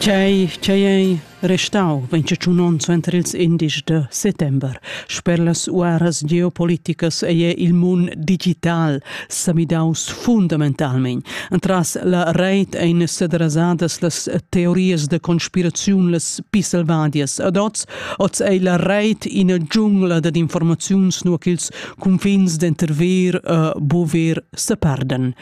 Quei ch'ei ei restau vegn tschun onns suenter ils indices da settember. Sper las uaras geopoliticas ei il mund digital semidaus fundamentalmein. Entras la reit ein sederasadas las teorias da conspiraziun las pi selvadias ad oz. Oz ei la reit ina giungla dad informaziuns nua ch'ils cunfins denter ver e buver separdan.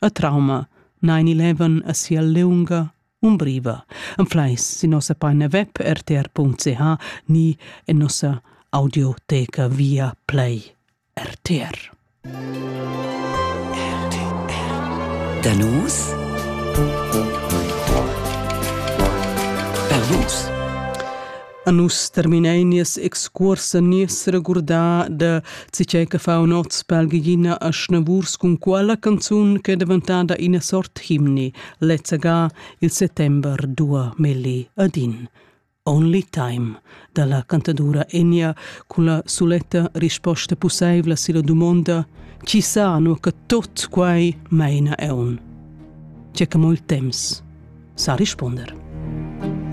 e trauma9-11 a sia leunga umbriva. Am flais sin nossa paina web rtr.ch ni en nossa audioteca via play RTR. Danus Perlus A nus terminein nies excuors a nies regurdar da tgei che fa un oz pel gigina a Schnavurs cun quella canzun che è daventada ina sort himni, lezza ga il settember 2010. Only Time dalla cantadura Enya cun la suletta risposta pusseivla silla dumonda chi sa nu che tot quai meina eun. C'è che mo il temps sa risponder.